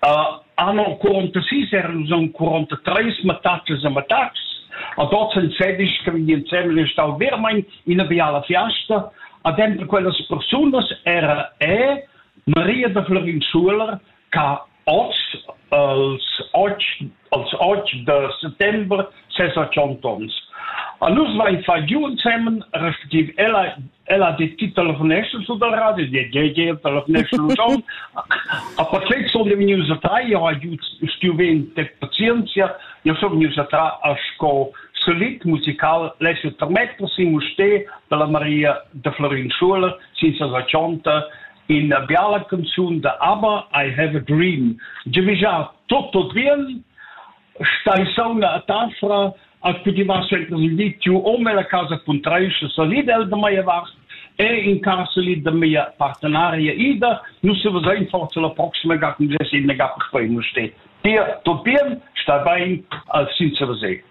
Anno 46 erans aunc 43 mattatschas e mattatschs, ad oz en sedisch che vegn ensemen stau veramein ina biala fiasta. Ad denter quellas persunas era e Maria da Florin Schuler, che oz els otg als otg da settember sesa tschient onns. A nus vain fà giu ensemen, respectiv ella ella ha dit Telefonation zu der Radio, die JJ Telefonation und schon. Aber plötzlich soll ich mich unterteilen, ich habe studiert während der Pazientia, ich soll mich unterteilen als Solid musical lesser Metter, si mustè, per la Maria de Florin Schuler, sin sa ina biala canzun da Aber I Have a Dream. Giavischà tutto bien, stai sauna a Tasra, a cu ti vas entras il vitio o nella casa puntraisce salida el da mia vast e in casa lì da mia partenaria Ida, nu se va sein forza la prossima ga con Jesse in ga per poi nu ste. Dir tot bien, sta bain al sinza